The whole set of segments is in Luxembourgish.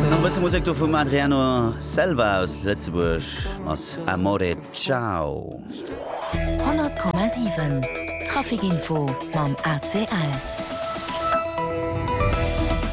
Nach e bësse Musek do vum Adriano Selva aus Lëtzebuerg mat Amore Ciao. 100,7 Trafic Info mam ACL.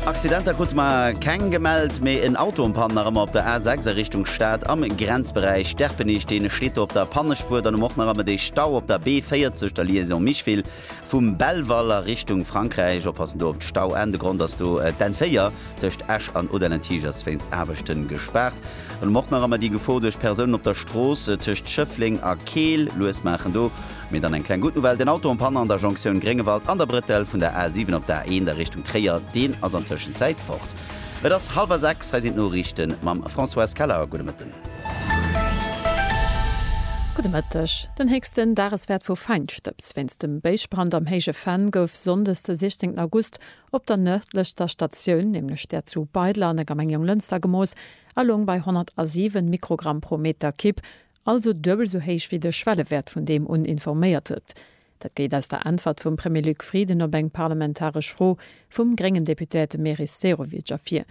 Accidenter krute mer keng gemellt, mee en Auto um Pann nach ëmmer op der A6 a Richtung Stad am Grenzberäich Derpenich. Dee steet do op der Pannespuer. Dann hu mer och nach ëmmer dee Stau op der B40, der Liaison Micheville. Vum Belval a Richtung Frankräich, oppassen do op d'Stauenn, de Grond ass do d'N 4 tëscht Esch an Odellentig ass wéinst Aarbechten gespaart. An um Ortner Rammer déi Gefor duerch Persounen op der Strooss tëscht Schëffleng a Keel. Lues maachen do. Mee dann eng kleng gutt Nouvelle, den Auto en panne an der Jonktioun Gréngewald an der Brëttel vun der A 7 op d'A1 a Richtung Tréier, deen ass an Tëschenzäit fort. Et ass hallwer 6, hei sinn d'Noriichte mam Françoise Keller. Gudde Mëtten. Gudde Mëtteg. Den héchsten Dageswäert vu Feinstëbs wéinst dem Béisbrand am Héije Venn gouf Sonndes de 16 August op der nërdlechster Statioun, nämlech där zu Beidler an der Gemeng Jonglënster gemooss a loung bei 107 Mikrogramm pro Meter Kib, also duebel esou héich wéi de Schwellewäert vun deem un informéiert huet. Dat geet aus der Äntwert vum Premier Luc Frieden op eng parlamentaresch Fro vum gréngen Deputéierte Meris Sehovic ervir.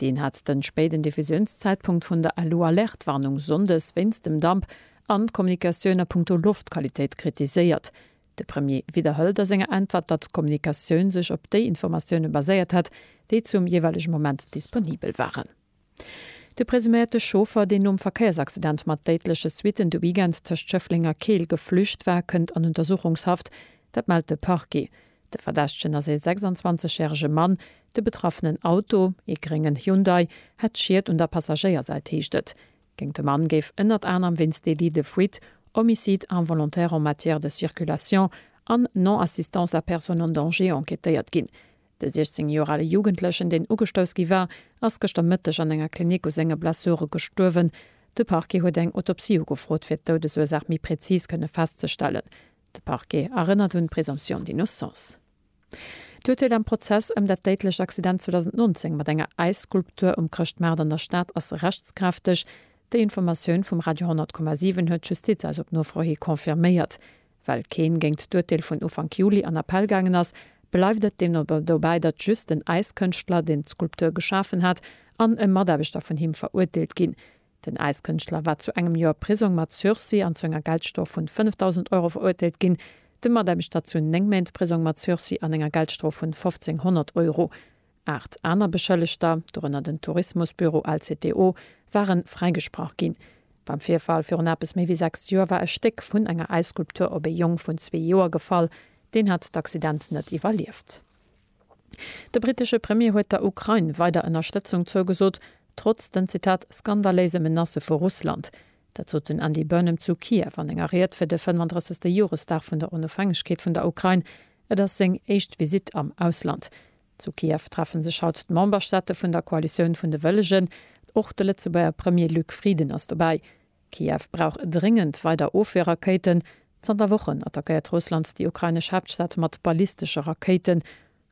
Deen hat den spéiden Diffusiounszeitpunkt vun der Alu-Alerte-Warnung Sonndes wéinst dem Damp an d'Kommunikatioun a punkto Loftqualitéit kritiséiert. De Premier widderhëlt a senger Äntwert, datt d'Kommunikatioun sech op déi Informatioune baséiert hätt, déi zum jeeweilege Moment disponibel waren. De presuméierte Chauffer, deen nom Verkéiersaccident mat déidleche Suitten de Weekend tëscht Schëffleng a Keel geflücht war, kënnt an Untersuchungshaft. Dat mellt de Parquet. De Verdächtegen ass ee 26 järege Mann. De betraffenen Auto, ee gréngen Hyundai, hätt Schied un der Passagéiersäit, heescht et. Géint de Mann géif ënnert anerem wéinst Délit de fuite, Homicide involontaire en matière de circulation an Non-assistance à personne en danger enquêtéiert ginn. De 16 Joer ale Jugendlechen, deen ugestouss gi war, ass gëschter Mëtteg an enger Klinik u senge Blessure gestuerwen. De Parquet huet eng Autopsie ugefrot, fir d'Doudesursaach méi präzis kënne festzestellen. De Parquet erënnert un d'Présomption d'innocence. D'Urteel am Prozess ëm dat déidlecht Accident 2019 mat enger Äisskulptur um Chrëschtmaart an der Stad ass rechtskräfteg. Déi Informatioun vum Radio 100,7 huet d'Justiz eis op Nofro hi confirméiert. Well keen géingt d'Urteel vun Ufank Juli an Appell gaangen ass, bleift et deemno dobäi, datt just den Äiskënschtler, deen d'Skulptur geschafen hat, an e Mataarbechter vun him verurteelt ginn. Den Äiskënschtler war zu engem Joer Prisong mat Sursis an zu enger Geldstrof vun 5.000 Euro verurteelt ginn, de Mataarbechter zu 9 Méint Prisong mat Sursis an enger Geldstrof vun 1.500 Euro. Aacht aner Beschëllegter, dorënner den Tourismusbüro LCTO, ware fräigesprach ginn. Beim Virfall virun eppes méi wéi 6 Joer war e Stéck vun enger Äisskulptur op ee Jong vun zwee Joer gefall. Deen hat d'Accident net iwwerlieft. De brittesche Premier huet der Ukrain weider Ënnerstëtzung zougesot, trotz den, Zitat, skandaléise Menacë vu Russland. Dat sot den Andy Burnham zu Kiew an enger Ried fir de 35. Joresdag vun der Onofhängegkeet vun der Ukrain. Et ass seng éischt Visitt am Ausland. Zu Kiew treffe sech haut d'Memberstaate vun der Koalitioun vun de Wëllegen. Och de Lëtzebuerger Premier Luc Frieden ass dobäi. Kiew brauch dréngend weider Ofweerrakéiten. Zanter Wochen attackéiert Russland déi ukrainesch Haaptstad mat ballistesche Rakéiten.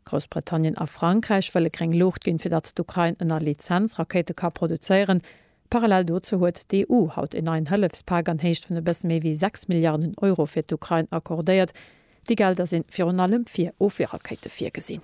Groussbritannien a Frankräich wëlle gréng Luucht ginn, fir datt d'Ukrain ënner Lizenz Rakéite ka produzéieren. Parallel dozou huet d'EU haut een neien Hëllefspak an Héicht vun e bësse méi wéi 6 Milliarden Euro fir d'Ukrain accordéiert. Déi Gelder si virun allem fir Ofweerrakéite virgesinn.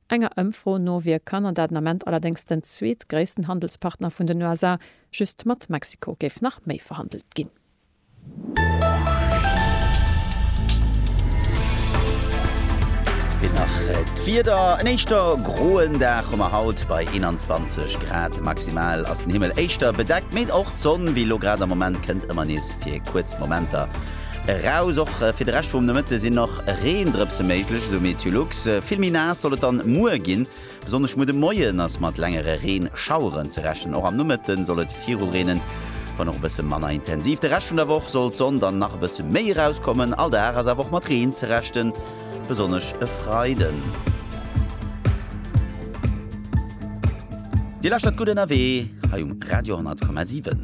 Enger Ëmfro no wier Kanada den Ament allerdéngs den zweetgréissten Handelspartner vun den USA, just mat Mexiko géif nach méi verhandelt ginn. Fir nach d'Wieder, En éischter groen Dag hu mer haut bei 21 Grad. Maximal ass den Himmel éischter bedeckt, mee och d'Sonn wéi elo grad. Am Moment kënnt ëmmer nees fir kuerz Momenter Eraus. Och fir de Rescht vum Nomëtte sinn nach Reendrëpse méiglech, esou Meteolux. Vill méi naass soll et dann muer ginn. Besonnesch muer de Moien ass mat längere Reenschaueren ze rechnen. Och am Nomëtte soll et viru reenen, wann och e bësse manner intensiv. De Rescht vun der Woch soll d'Sonn dann nach e bësse méi erauskommen. All Dag ass awer och mat Reen ze rechnen, besonnesch e Freiden. Dir lauschtert Gutt ënnerwee hei um Radio 10,7.